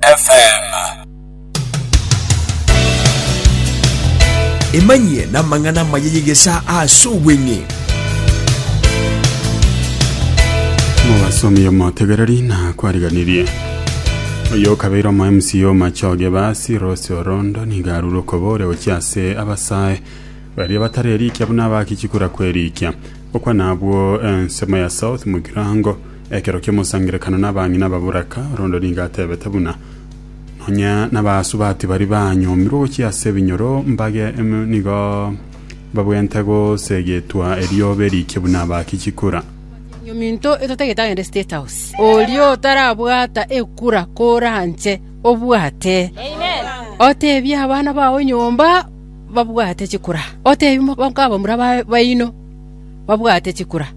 FM. Emanyie namang'ana amaya y'egesa ase obweng'e. Obasomi omotegereri na kwariganirie oyo okabeire omo MCA omachoge basi Rose Orondo niga arure okobore gochia ase abasae baria batare erikia buna abakichikura kwerikia okwa nabwo ensemo ya South Mugirango Ekero ki'omosangererekano n'abang'ina baboraka, Rondo nigo atebete buna, Nonya nabasubati baria banyomirwe gochia ase ebinyoro mbage ime nigo babwenerete gosegetwa erioba eriike buna abaaki chikura. Ominto etotagete agende State House. Oria otarabwata ekura koranche obwate. Otebie abana bao nyomba babwate chikura. Otebie mokabamura baino. babwate chikura.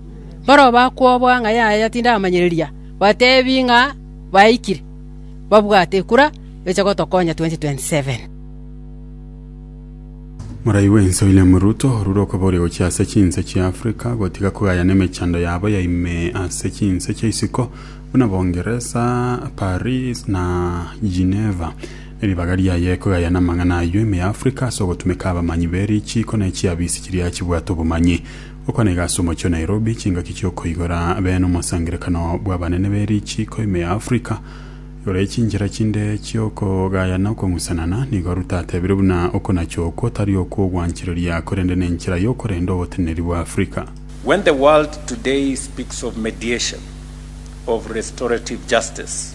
Barabwo bakwobwa ng'a yaya tindamanyereria, batebi ng'a baikire, babwate ekura, beche gotokonya 2027. Morai bw'ense William Ruto orure okoboria gochia ase chinse chia Africa gotiga kogayana emechando yabo ya ime ase chinse chia isiko buna Bongeresa, Paris na Geneva Eribaga riaye kogaya namang'ana ayio ime ya Afrika ase ogotumeka abamanyi be richiiko ne chiabisi chiria chibwate obomanyi. Gokwana iga ase omochie o Nairobi, chingaki chiokoigora be nomosangerekano bw'abanene be richiiko ime ya Afrika igoro ye chinchera chinde chiokogaya na okong'usanana, nigo Ruto atebire buna okonacha okwo tari okw'ogwanchereria korende nenchera yokorenda ogoteneneri bwa Afrika. When the world today speaks of mediation, of restorative justice,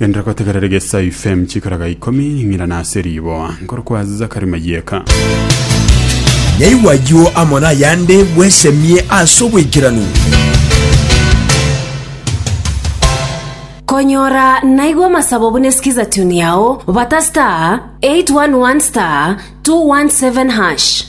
Gendera kotegerera gesa ifem chikaraga ikomi ng'ira nase riboa nkoro kwa Zakari Mayeka. Nyaigwa ayio amo nayande bwesemie ase oboikeranu. Konyora naigwa amasabo buna skiza tune yao, bata star 811 star 217 hash.